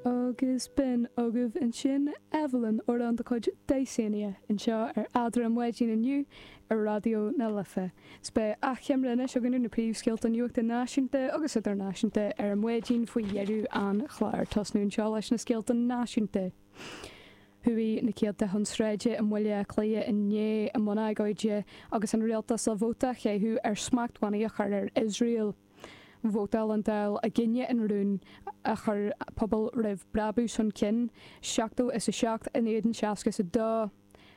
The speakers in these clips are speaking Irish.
Agus b'in agaibh ansin Evelyn amhrán de chuid Dysania anseo ar Eadra an Mhaidin inniu ar Raidió na Life. S beidh achoimre anois againn ar na príomhscéalta nuachta náisiúnta agus idirnáisiúnta ar an Mhaidin faoi dheireadh an chláir. Tosnú anseo leis na scéalta náisiúnta. Chuaigh na céadta chun sráide i mBaile Átha Cliath inné i mbun agóide agus an rialtas le vóta a chaitheamh ar smachtbhannaí a chur ar Iosrael. Vótáil an Dáil i gcoinne an rúin a chuir Pobal roimh Brabús chun cinn, seachtó is a seacht in éadan seasca is a dó.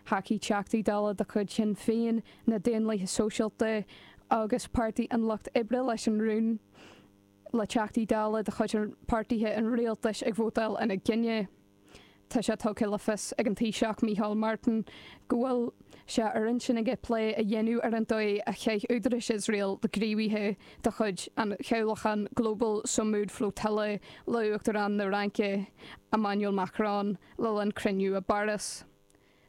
Thacaigh Teachtaí Dála de chuid Shinn Féin, na Daonlathaithe Sóisialta agus Páirtí an Lucht Oibre leis an rún, le Teachtaí Dála de chuid páirtithe an rialtais ag vótáil ina choinne. Tá sé tugtha le fios ag an Taoiseach Micheál Martin go bhfuil sé ar intinn aige plé a dhéanamh ar an dóigh a chaith údarais Iosrael le gníomhaithe de chuid an chabhlachán Global Sumud Flotilla le Uachtarán na Fraince, Emmanuel Macron, le linn cruinniú i bPáras.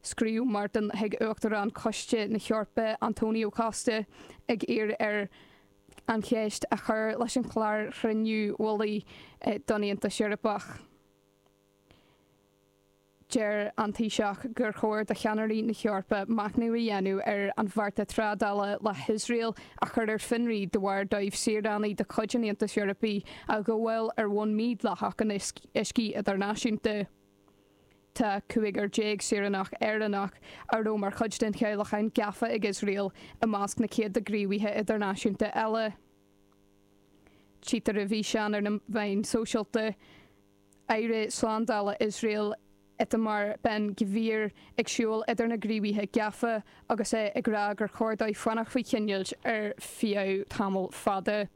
Scríobh Martin chuig Uachtarán Choiste na hEorpa Antonio Costa ag iarraidh air an cheist a chur leis an chlár chruinniú mhullaigh don Aontas Eorpach. Deir an Taoiseach gur chóir do cheannairí na hEorpa machnamh a dhéanamh ar an bhearta trádála le hIosrael a chur ar fionraí de bharr dóibh saoránaigh de chuid an Aontais Eorpaigh a ghabháil ar bhonn mídhleathach in uiscí idirnáisiúnta. Tá cúigear déag saoránach Éireannach a raibh mar chuid den chabhlachán gafa ag Iosrael i measc na céadta gníomhaithe idirnáisiúnta eile. Tchítear i bhfíseán ar na meáin sóisialta aire slándála Iosrael Itamar Ben Gvir ag siúl idir na gníomhaithe gafa agus é ag rá gur chóir dóibh fanacht faoi choinneáilt ar feadh tamall fada.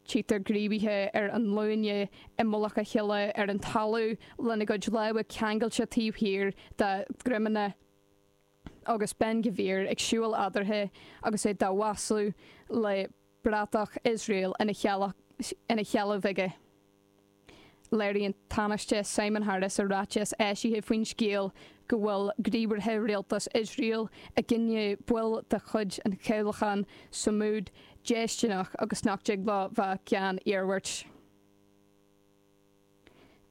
Tchítear gníomhaithe ar a nglúine i mullach a chéile ar an talamh lena gcuid lámha ceangailte taobh thiar dá ndroimeanna. agus Ben Gvir ag siúl eadarthu agus é dá mhaslú le bratach Iosrael ina sheilbh aige. Léiríonn Tánaiste Simon Harris i ráiteas eisithe faoin scéal go bhfuil gníomhartha Rialtas Iosrael i gcoinne baill de chuid an chabhlacháin Sumud déistineach agus nach dtig leo bheith gan iarmhairt.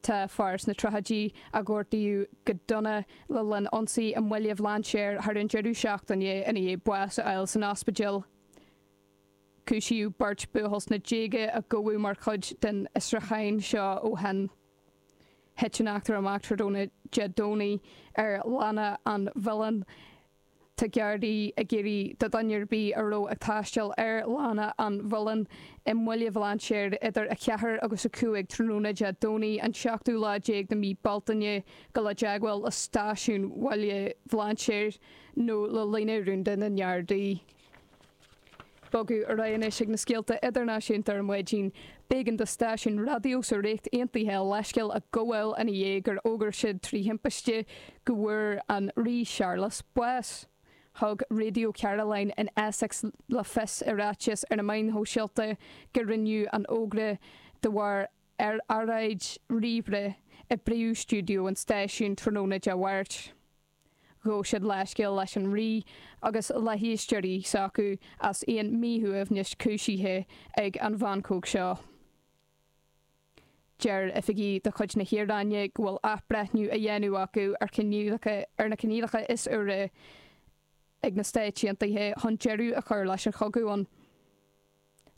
Tá fear sna tríochaidí a gortaíodh go dona le linn ionsaí i mBaile Bhlainséir thar an deireadh seachtaine ina dhiaidh bás a fháil san ospidéal. Cúisíodh beirt buachaill sna déaga a gabhadh mar chuid den fhiosrúcháin seo ó shin. Thit an eachtra amach tráthnóna Dé Domhnaigh ar Lána an Mhuilinn. Tá Gardaí ag iarraidh ar dhuine ar bith a raibh ag taisteal ar Lána an Mhuilinn i mBaile Bhlainséir idir 4 agus 5 tráthnóna Dé Domhnaigh an seachtú lá déag de mhí Bealtaine dul i dteagmháil le stáisiún Bhaile Bhlainséir nó le líne rúnda na nGardaí. Bogadh ar aghaidh anois chuig na scéalta idirnáisiúnta ar maidin. B'éigean do stáisiún raidió sa Ríocht Aontaithe leithscéal a ghabháil i ndiaidh gur fhógair siad trí thimpiste go bhfuair an Rí Searlas bás. Thug Radio Caroline in Essex le fios i ráiteas ar na meáin shóisialta gur rinneadh an fógra de bharr earráid ríomhaire i bpríomhstiúideo an stáisiúin tráthnóna Dé Máirt. Ghabh siad leithscéal leis an Rí agus le héisteoirí s'acu as aon míshuaimhneas cúisithe ag an mheancóig seo. Deir oifigigh de chuid na hIaráine go bhfuil athbhreithniú á dhéanamh acu ar choinníollacha ar na coinníollacha is úire ag na Stáit Aontaithe chun deireadh a chur leis an chogadh ann.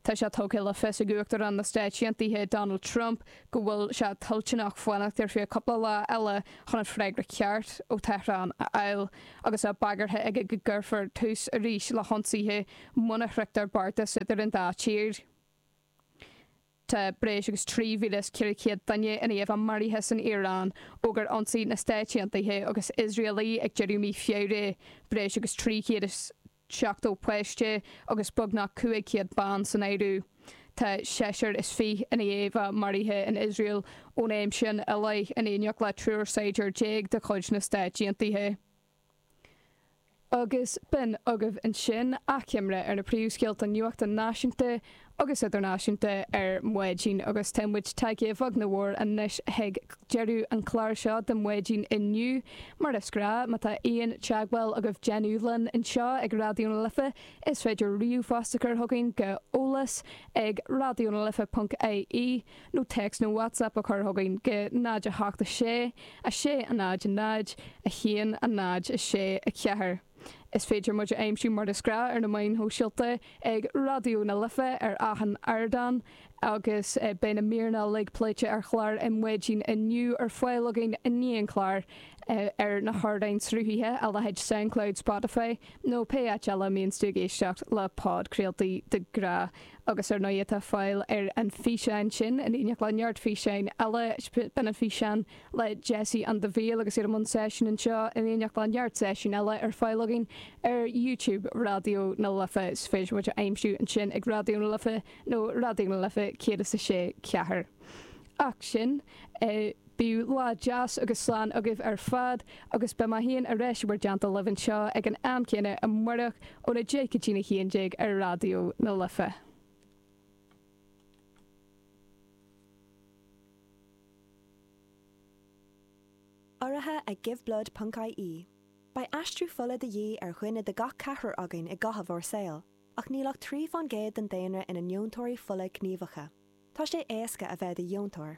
Tá sé tugtha le fios ag Uachtarán na Stáit Aontaithe Donald Trump go bhfuil sé toilteanach fanacht ar feadh cúpla lá eile chun an freagra ceart ó Tehran a fháil agus é bagartha aige go gcuirfear tús arís le hionsaithe muna sroichtear beartas idir an dá tír. Tá breis agus 3,400 duine i ndiaidh a maraithe san Iaráin ó gur ionsaigh na Stáit Aontaithe agus Iosrael í ag deireadh mí Feabhra, breis agus 370 páiste agus beagnach 500 bean san áireamh. Tá seisear is fiche i ndiaidh a maraithe in Iosrael ón am sin i leith, in éineacht le triúr saighdiúir déag de chuid na Stáit Aontaithe. agus b'in agaibh ansin achoimre ar na príomhscéalta nuachta náisiúnta agus idirnáisiúnta ar maidin agus tá muid tagtha a bheag nó a mhór anois chuig deireadh an chláir seo de Ar Maidin inniu mar is gnáth má tá aon teagmháil agaibh le déanamh linn anseo ag Raidió na Life is féidir ríomhphost a chur chugainn go eolas ag raidiona life ponc ie nó text nó WhatsApp a chur chugainn go 0 8 6 6 0 0 1 0 6 4. Is féidir muid a aimsiú mar is gnáth ar na meáin shóisialta, ag Raidió na Life ar achan ardán agus beidh na míreanna uilig pléite ar chlár Ar Maidin inniu ar fáil againn i ndiaidh an chláir ar na hardáin sruthaithe, a leithéid Soundcloud, Spotify nó pé áit eile a mbíonns tú ag éisteacht le podchraoltaí de ghnáth. agus ar ndóigh tá fáil ar an bhfíseán sin, in éineacht le neart físeáin eile, beidh an físeán le Jessie and the Veil agus iad i mbun seisiúin anseo, in éineacht le neart seisiún eile, ar fáil againn ar YouTube Raidió na Life. Is féidir muid a aimsiú ansin ag Raidió na Life nó Raidió na Life 106 4. Ach sin é. Bíodh lá deas agaibh agus slán agaibh ar fad agus beidh mé féin ar ais i bhur dteannta libh anseo ag an am céanna amárach óna deich go dtína haon déag ar Raidió na Life. Urraithe ag Give Blood ponc IE, Beidh aistriú fola de dhíth ar dhuine de gach ceathrar againn i gcaitheamh ár saol, ach níl ach trí fán gcéad den daonra ina ndeontóirí fola gníomhacha. Tá sé éasca a bheith i do dheontóir.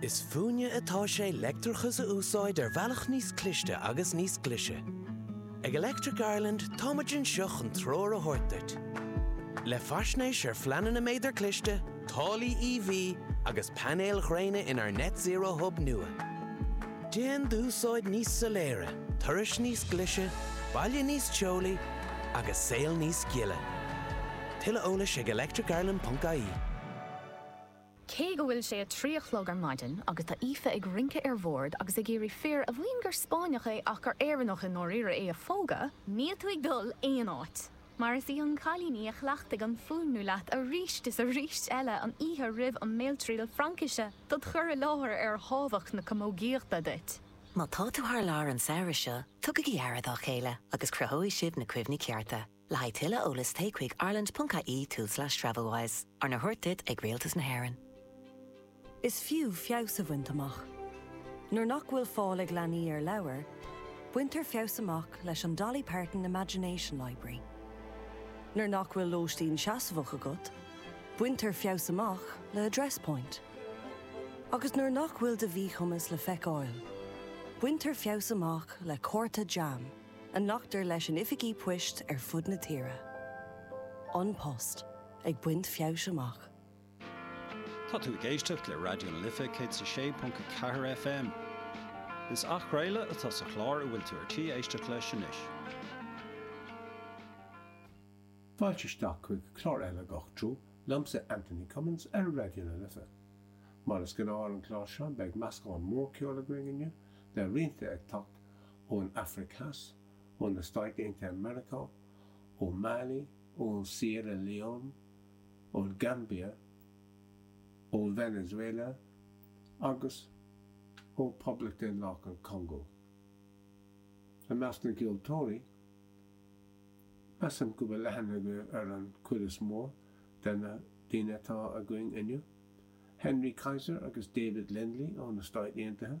Is fúinne atá sé leictreachas a úsáid ar bhealach níos cliste agus níos glise. Ag Electric Ireland táimid anseo chun treoir a thabhairt duit le faisnéis ar phleananna méadar cliste, táillí EV agus painéil ghréine inár Net Zero Hub nua. Déan d'úsáid níos soiléire, turais níos glise, baile níos teolaí agus saol níos gile. Tuilleadh eolais ag electricireland.ie. Cé go bhfuil sé a trí a chlog ar maidin agus tá Aoife ag rince ar bhord agus ag iarraidh fir a mhaíonn gur Spáinneach é ach gur Éireannach i ndáiríre é a phógadh, níl tú ag dul aon áit, mar is í an cailín í a chleachtaigh an fuaimniú leat arís is arís eile an oíche roimh an mbéaltriail Fraincise dod' chur i láthair ar thábhacht na camógaíochta duit. Má tá tú thar lear an samhradh seo, tugaigí aire dá chéile agus cruthóidh sibh na cuimhní cearta. Le haghaidh tuilleadh eolais téigh chuig ireland.ie tulslais travelwise, arna thabhairt duit ag Rialtas na hÉireann. Is fiú feabhas a bhaint amach. Nuair nach bhfuil fáil ag leanaí ar leabhair, baintear feabhas amach leis an Dolly Parton Imagination Library. Nuair nach bhfuil lóistín seasmhach agat, baintear feabhas amach le Address Point. Agus nuair nach bhfuil do mhíchumas le feiceáil, baintear feabhas amach le cárta JAM. A nglactar leis in oifigí poist ar fud na tíre? An Post, ag baint feabhais amach. Tá tú ag éisteacht le Raidió na Life 106.4 FM. Is athchraoladh atá sa chlár a bhfuil tú ar tí éisteacht leis anois. Fáilte isteach chuig clár eile Gach Treo liomsa Anthony Cummins ar Raidió na Life. Mar is gnáth ar an gclár seo beidh meascán mór ceoil againn inniu le roinnt ag teacht ón Afraic Theas, ó na Stáit Aontaithe Meiriceá, ó Mali, ó Sierra Leone, ón Gambia, ó Venezuela agus ó Phoblacht Dhaonlathach an Chongó. I measc na gceoltóirí, measaim go bhfuil aithne ar an chuid is mó de na daoine atá againn inniu, Henry Kaiser agus David Lindley ó na Stáit Aontaithe,